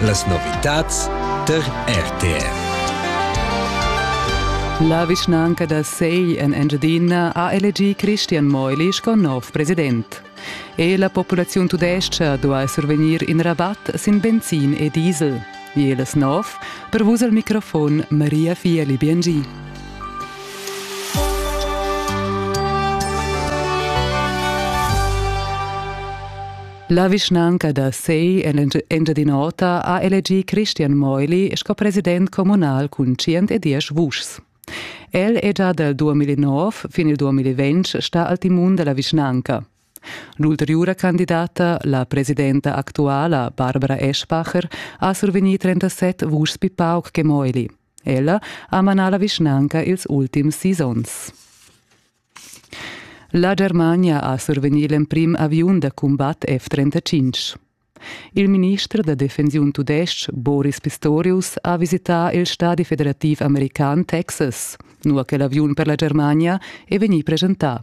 Las novitads tar RTR. La vischnanca da Sei en Engiadina ha elegì Christian Meuli sco nov president. E la populaziun tudestga duai survegnir in rabatt sin benzin e diesel. Jeles nov, per vus al microfon Maria Fieli Biengi. La vischnanca da Sei en Engiadin'Ota ha elegì Christian Meuli sco president communal cun 110 vuschs. El è già dal 2009 fin il 2020 stà al timun da la vischnanca. L'ulteriura candidata, la presidenta actuala Barbara Eschbacher, ha survegnì 37 vuschs pli pauc che Meuli. Ella ha manà la vischnanca ils ultims sis onns. La Germania ha survegnì l'emprim aviun da cumbat F-35. Il minister da defensiun tudestg Boris Pistorius ha visità il stadi federativ american Texas, nua che l'aviun per la Germania è vegnì presentà.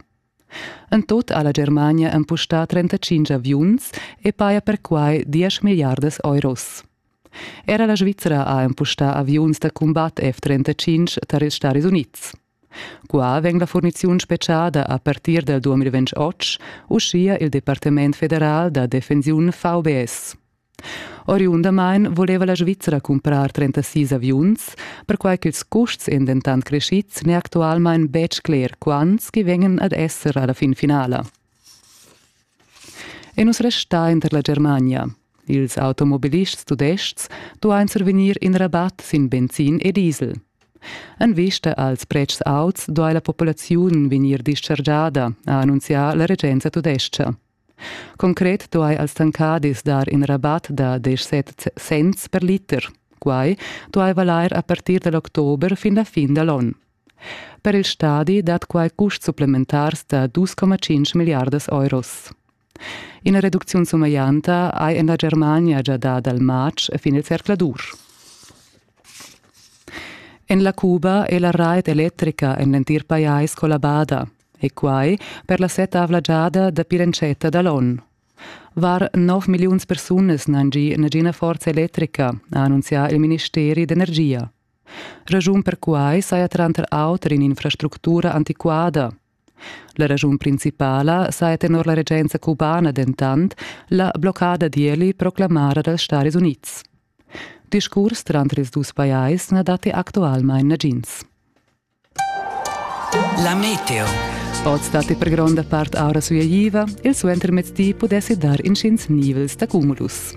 En tut ha la Germania empustà 35 aviuns e paja perquai 10 miliardas euros. Era la Svizra ha empustà aviuns da cumbat F-35 tar ils Stadis Unids. Qua vegn la furniziun spetgada a partir dal 2008, uschia il Departament federal da defensiun VBS. Oriundamain voleva la Svizzera cumprar 36 aviuns, perquai ch'ils custs èn dentant creschids n'è actualmain betg cler quants che vegnan ad esser alla fin finala. E nus restain tar la Germania. Ils automobilists tudestgs duain survegnir in rabat sin benzin e diesel. En vista als pretschs auts duai la populaziun vegnir dischargiada, ha annunzià la regenza tudestga. Concret duai als tancadis dar in rabat da 17 cents per liter. Quai duai valair a partir da l'october fin la fin da l'onn. Per il stadi dat quai custs supplementars da dus coma tschintg milliardas euros. Ina reducziun sumeglianta hai en la Germania gia dà dal matg fin il zercladur. En la Cuba è la rait electrica en l'entir pajais collabada e quai per la settavla giada dapi l'entschatta da l'onn. Var 9 milliuns persunas n'han gì nagina forza electrica, ha annunzià il ministeri d'energia. Raschun per quai saja tranter auter in'infrastructura antiquada. La raschun principala saja tenor la regenza cubana dentant la bloccada d'ieli proclamara dals Stadis Unids. Discurs tranter ils dus pajais na datti actualmain nagins. La meteo. Oz datti per gronda part aura sueigliva, il suentermezdi pudessi dar intgins nivels da cumulus.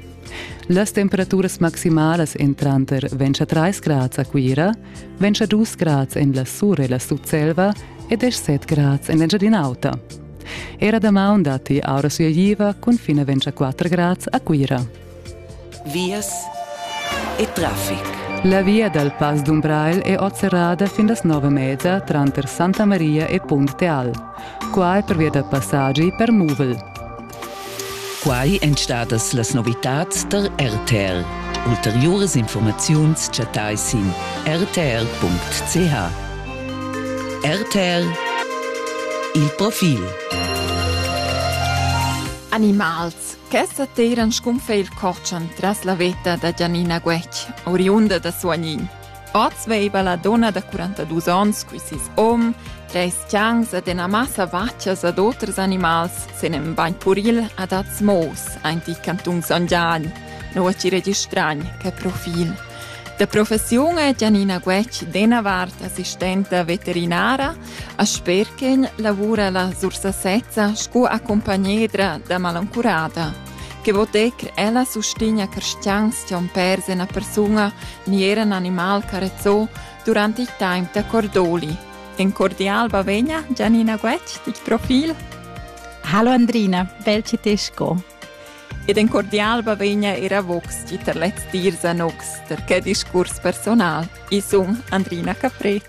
Las temperaturas maximalas èn tranter 23 grads a Cuira, 22 grads en la Sur e la Sutselva e 17 grads en l'Engiadin'Auta. Era damaun datti aura sueigliva cun fin a 24 grads a Cuira. vias e traffic. La via dal Pass d'Umbrail è oz serrada fin las nove mezza tranter Santa Maria e Punt Teal. Qua è pervia da passaggi per muvel. Quai èn stadas las novitads da RTL. Ulteriuras informaziuns chattai sin rtl.ch. RTL Il profil. Animals Questa teiran scunfè il cortschan tras la veta da Giannina Guetg, oriunda da Suagnin. Oz veiva la donna da 42 ons cui sis om, treis chans ed ena massa vaccias ad oters animals sen en bagn puril ad az Moos, aint i cantun Son Gian, noua ci registragn che profil. Da professiun è Giannina Guetg dena vart assistenta veterinara A Sperken lavura la Sursasezza sco accumpagnedra da malancurada. Che votec ella sustigna cristians tian pers ena persuna ni era un animal carezzò durant il temps da Cordoli. En cordial bavegna Gianina Guetg, tic profil. Hallo Andrina, bel ci te sco. Ed en cordial bavegna era vox ti ter lez dir za nox, ter che discurs personal, i sun Andrina Capret.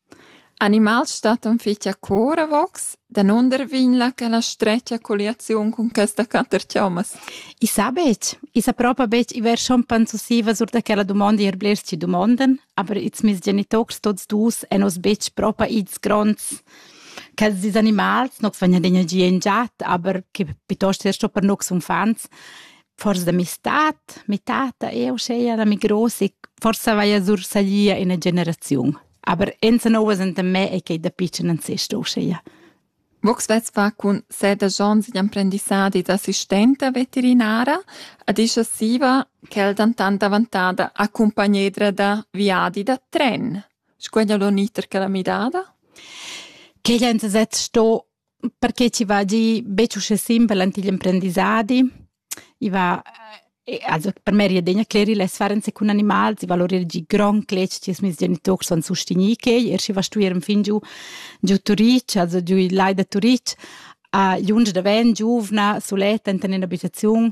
Animals stattan fich accour avos, danunder vegn là quella stretga colliaziun cun questa quatter chommas? I sa betg. I sa propa betg. I vers schon pensusivas sur da quella dumonda eir blers chi dumondan, aber ils meis genitours tuots dus han oz betg propa its gronds quels dis animals. Nox vegnan d'energia in giat, aber que piuttost er sto per nox uffants. Forsa da mi stat, mi tata, eu seia da mi gross e forsa vaia sursalia ina generaziun. Aber enza novas enta me è che da pitschen an sest uscheia. Vox vesva cun sede jons d'imprendissadi d'assistenta veterinara, ad ischa siva quel dantan davantada accompagnedra da viadi da tren. Squeglia l'oniter che la midada? Che enza set sto perché ci va gi betg uschè simpel ant igl emprendissadi. I va eh, also per me ria degna cleri la sfarenza cun animals, i valorir gi grond cletg che ils meis genitors son sustegni quei, er schi va stuer en fin giu giu Turic, also giu l'ai da Turic, a junge da ven giuvna suletta enten in abitaziun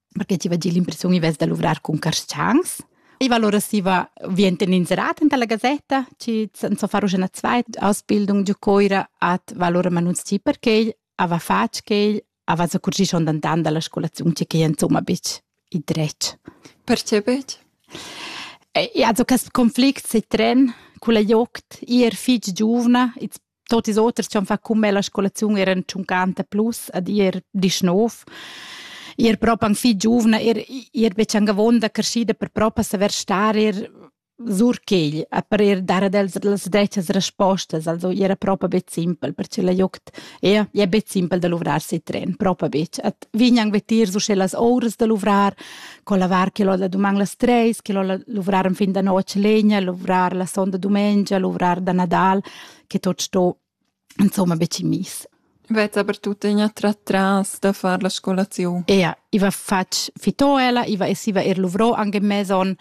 perché ti va dir l'impressiun i vess da luvrar cun carschangs. I va allora si va vien inserat enta la gazetta, ci san so far una zweit Ausbildung giu coira at va allora manunz ti perché ava fatg che ava sa curgi schon dan dan dalla scolazione che che insomma bitch i dretg. Perché bitch? E also quest conflict se tren con la joct ir fitg giovna, it's Tot ils oters che han fatg cun me la scolaziun eran tschuncanta plus ad ir disch nov. Ir propi anc fitg giuvna, ir, ir betg anc avonda creschida per propi saver star ir sur quegl a per ir dar ad els las detgas respostas, also era propi bet simpel, perche la joct ja, ja bet simpel da luvrar si tren, propi betg. Et vegn anc vetir so sche las ouras da luvrar, co lavar che l'ho da duman las treis, che l'ho luvrar en fin da notg legna, luvrar la sonda dumengia, luvrar da Nadal, che tot sto insomma be miss. Vezza per tuttegna tra tras da far la scolazione. Ea, iva fatg fito ella, iva essiva er luvrò anche meson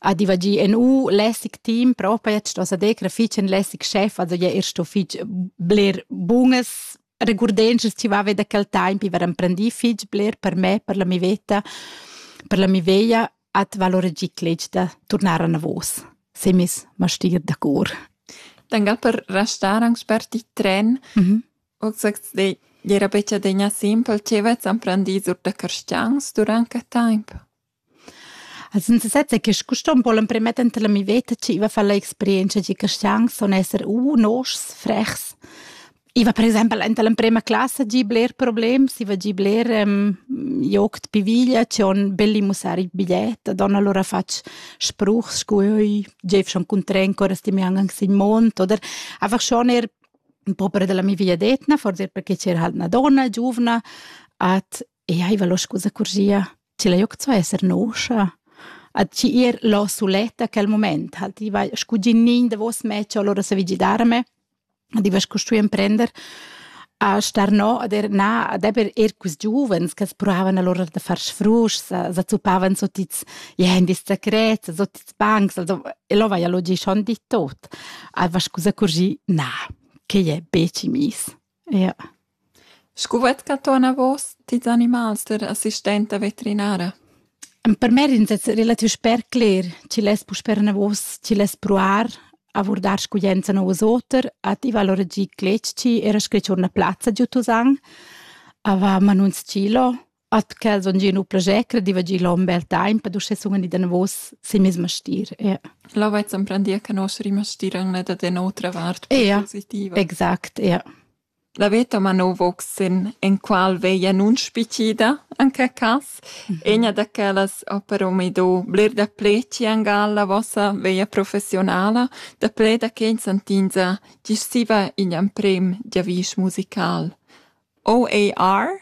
ad iva gi en u lässig team, propa jetzt was de grafic en lässig chef, also ja er sto fitg bler bunges regurdences ci va da quel tempo, iva emprendi fitg bler per me, per la mi veta, per la mi veia at valora giclec da tornar anavos, semis mastir da cor. Dann per restar anche per ti tren, mm -hmm. ho gesagt, de, era beccia degna simpel, ce vez amprendisur da carstians durante temp. Also sind es jetzt che custom wollen premetten la mi veta ci va fa la experienza di castians son esser u nos frechs I va per exempel enta l'emprema classa gi bler problems, i va gi bler um, joc pi viglia, c'è on belli mussar il bigliet, don allora fatg spruch, sco oi, geif schon cun tren, cora sti mi angang sin mont, oder einfach schon er proprio della mia vegliadetna, forse perché c'era halt una donna giovane, at Eiva lo scusa curgia, tg'el ei oc zo esser noscha? A tgi ir lo suletta quel mument, halt i vai scu gignin davos me, cho allura sa vi gidarme, ad i va scu stui emprender a star no ad er na, ad eber er quist giuvens ch'as provavan allura da far sfruschs, sa zuppavan sut its gendis secrets, sut its bancs, also e lo vaia lo gi schon dit tot. A va scusa curgi, na, quei è becci miss. Ja. Scu vet che tu anavos tils animals der assistenta veterinara? Per me ris es relativ sper cler chi less puspè anavos chi less pruar a vurdar scuglienza nouvas oter, a tivar lur gi cletg-chi, era sche tschorna plazza giü Tusan, a va a manun s-chilo, At quels on gia nu plager crediva gia l'hom bel temp ed uschè sun i danavos sin meis mastier. Yeah. Là vaiz emprendier che nostri mastier han da den otra vart yeah. positiva. Exact, ja. Yeah. La veta ma no voxen en qual veia nun spicida, en che cas, mhm. egna da quellas ha però mi do bler da pleci an galla vossa veia professionala, da ple da che santinza gissiva in am prem giavisch musical. OAR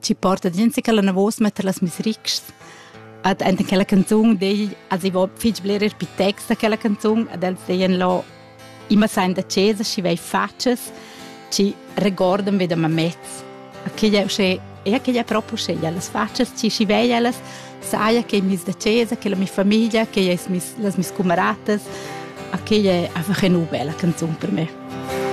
ci porta gente che la navos mette las misrics ad enten quella canzone dei als i vo fich bler per text quella canzone ad els deien lo immer sein da cesa ci vai faces ci regordan ve da mamets che ja sche e che ja proprio sche ja las faces ci ci vai ellas saia che mis da cesa che la mia famiglia che ja mis las mis camaratas a che ja a fa nu bella canzone per me